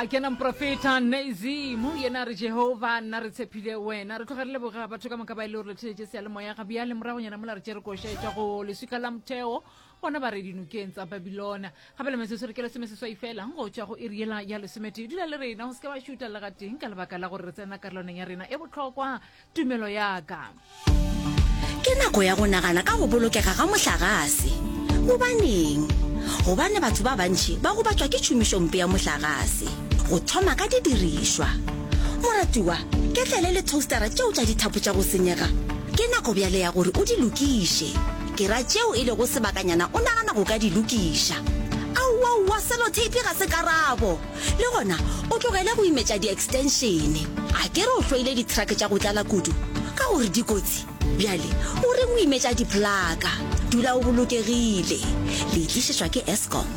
a kena mprofeta nazimu yena a re jehova nna re tshepile wena re tloga re leboga batho ka moka ba e le gore le theletše sealemoya ga bjale moragonyana mola re tše re košetša go leswika la motheo bona ba re dinokeng tsa babilona gape le metsotso re ke lesome seswai fela go tšwa go iri yela ya lesometee dula le rena go se ke ba šuta le gateng ka lebaka la gore re tsena karolwaneng ya rena e bohlokwa tumelo ya ka ke nako ya go nagana ka go bolokega ga mohlagase gobaneng gobane batho ba bantšhi ba gobatšwa ke tšhomišompe ya mohlagase go thoma ka didirišwa moratiwa ke tlele le toastera tšeo tša dithapo tša go senyega ke nako bjale ya gore o di lokiše ke ra tšeo e lego sebakanyana o nagana go ka di lokiša aowaowa selotape ga se karabo le gona o tlogele go imetša di-extenšene a ke re o hloile dithrake tša go tlala kudu ka gore dikotsi bjale o re o imetša diplaka dula o bolokegile le itlišetšwa ke escom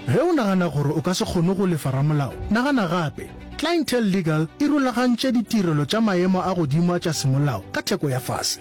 ge o nagana gore o ka se kgone go lefa ramolao nagana gape clientele legal e rulagantše ditirelo tša maemo a godimo a tša semolao ka theko ya fase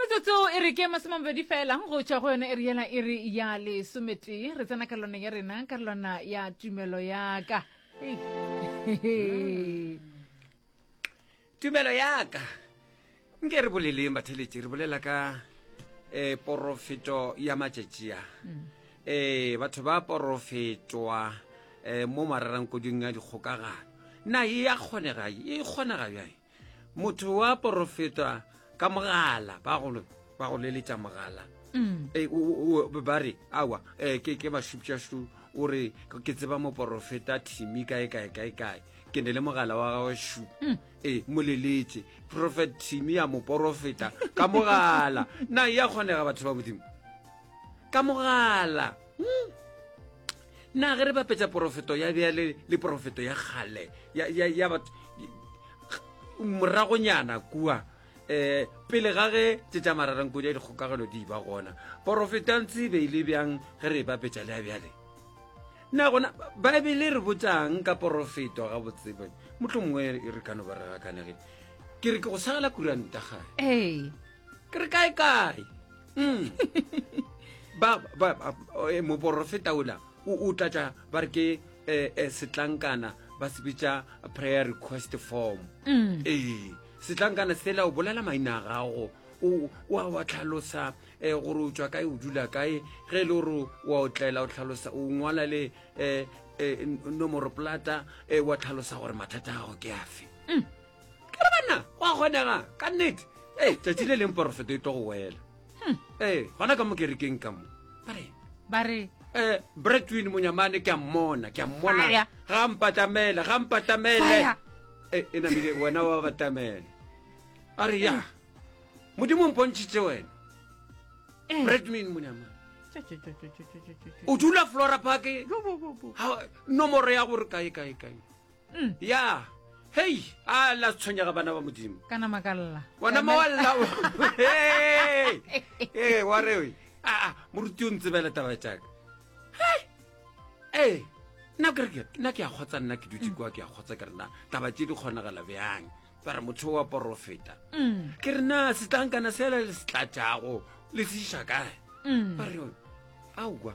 metsotso e re ke masomamabedi fela go tšwa go yone e re yela e re ya lesometee re tsena ka lona ya rena ka lona ya tumelo yaka tumelo yaka nke re boleleng batheletši re bolela ka um porofeto ya matšatšia um eh, batho ba porofetwa um eh, mo marerang koding ya dikgokagano na e ya kgonega e kgonega bjang motho wa porofetwa ka mogala ba go ba go leletša mogala mm. eh, ba re awa eh, ke ke bashupšašu o re ke tseba moporofeta thimi kae kae kae kae ke ne le mogala wa gagwe shu mm. ee eh, moleletse profet thimi ya moporofeta ka mogala na ya kgonega batho ba modimo ka mogala hmm. na ge re bapetsa porofeto ya bjale le porofeto ya kgale ya batho moragonyana kua um pele ga ge tsetsa mararankodi ya dikgokagelo di ba gona porofetanse be ile bjang ge re e bapetsa le ya bjale na gona baebele re botsang ka porofeto ga botsebe motlho mongwe e re kano ba re gakanege ke re ke go sagela kuranta gae ee ke re kae kae mm. ba ba eh, moporofeta ola o tlatša ba re ke eh, eh, setlankana ba se bitša prayer request form mm. ee setlankana sela o bolela maina a gago wa wa tlhalosa um gore o tswa kae o dula kae ge e le gore wa o tlela o tlhalosa o ngwala le um nomoro plata um wa tlhalosa gore mathata a gago ke afe mm. ke re banna go a kgonega ka nnete ee tsatsi le leng porofeto e tlo go wela hmm. ee gona ka mo kerekeng ka mo bare bare eh bretwin monyamane ke a mmona ke a mmona ga mpatlamele ga mpatlamele e e namile wena wa batamele a re ya modimo mpontšhitse wena eh. bretwin monyamane o dula flora park nomoro ya gore kae kae kae Ya, hei, a la tshwenyega bana ba Modimo. Ka nama ka lla. Wona ma wa lla. Ee, wa re we. A, a, moruti o ntsebele taba tša ka. Hei! Ee, nna ke re ke- nna ke a kgotsa nna ke dutse kwa ke a kgotsa ke rena taba tše di kgonagala bjang ba re motho wa porofeta ke re na setlankana sela le se tlatšago le se iša kae ba re aowa